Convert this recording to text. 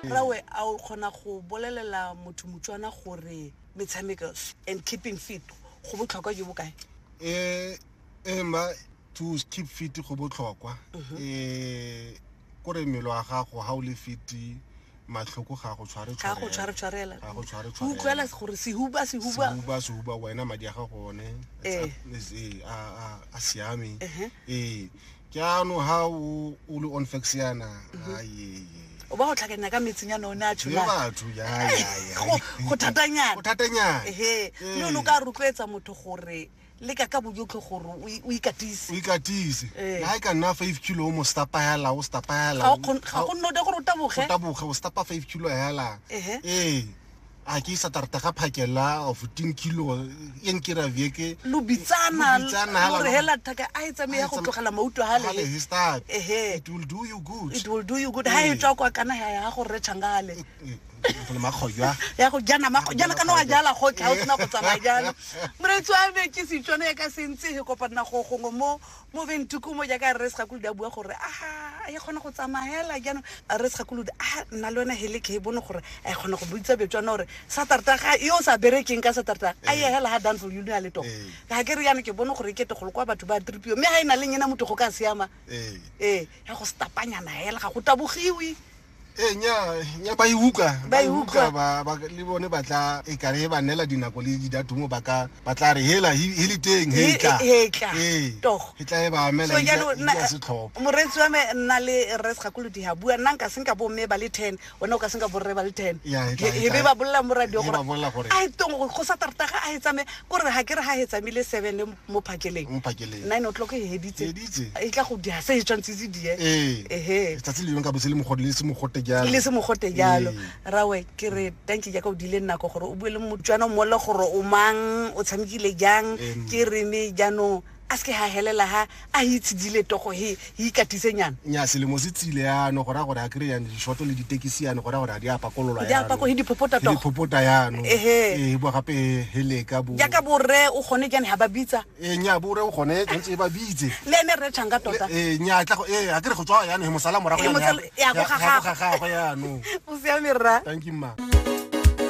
Rawe a o kgona go bolelela motho Motswana gore metshameko and keeping fit go botlhokwa jo bo kae? Eh eh mma to keep fit go botlhokwa eh kore mmele wa gago ha o le fit matlhoko ga go tshware Ga go tshware tshwarela. Ga go tshware Go utlwela tshwarela. gore sehuba sehuba. Sehuba sehuba wena madi a gago one Eh. is- eh, a a- a siame Ehe. eh jaanong ha o o le onfax yana mhm. ayeye o ba go tlhakanya ka metsing yana o ne a tsholaago thatanyana mme o ne o ka rotloetsa motho gore le ka ka bojotlho gore o ikatise o ikatise eh. ha e ka nna five kilo o mo stapa hela o stapa hela ga go nno de gore o taboge o taboge o stapa five kilo hela ee a ke isa tarta ga phakela of ten kilo e nkira vieke lo bitsana lo re hela thaka a e tsame ya go tlogela mauto ha le he start ehe it will do you good it will do you good ha e tswa kwa kana ya ya go re changale le makgojwa ya go jana makgojana kana wa jala go tla o tsena go tsamaya jalo moretsi wa me ke setswana ya ka sentse he kopana go gongwe mo moveng tukumo jaaka rre segakolodi a bua gore a e kgona go tsamaela jaanong rre segakolodi a nna le yone hele ke bone gore a e kgona go boitsa betswana gore satarta ga yo sa berekeng ka satarta a ye hela ga danfo yone ya letogo ga ke re yana ke bone gore ke tegolo kwa batho ba tripio mme ga e na le nyena motho go ka siama ee ya go stapanyana hela ga go tabogiwe ee nya ba e uka ba e uka le bone ba tla e kare ba nela dinako le didatumo ba ka ba tla re hela he le teng he tla he tla ee he tla e ba amela so jalo na moretsi wa me nna le res ga kulo di ha bua nna nka senka bo me ba le 10 ona o ka senka bo re ba le 10 he be ba bolla mo radio gore a tong go sa tarta ga a hetsa me go re ha ke re ha hetsa me le 7 mo phakeleng mo phakeleng nine o'clock e heditse Editse. e tla go dia se e tshwanetse se die ee ehe letsatsi le lengwe ka botse le mogote le se mogote jalo le se mogote jalo Ee. rawe ke re thank you jaaka o dile nako gore o bue le motswana mmole gore o mang o tshamekile jang Em. ke rene jaanong a se ke ga helela ga a itshedile togo he e ikatise nyana nya selemo se tsile yano go raya gore a kry yane dishoto le ditekisi yane go raya gore a di a pakololwa Di a pako- he di phopota togo. diphopota yano Ehe. ee bo gape heleka bo jaaka borre o kgone jane ga ba bitsa ee nya bore o gone tshwanetse e ba bitse le ene rre tšhang ka tota ee nya tla go ee a kere go tswa yano he mosala morago Ee, yane mosala- ya go ya- ya gagagwe. go gagagwe yano o siame rra thank you mma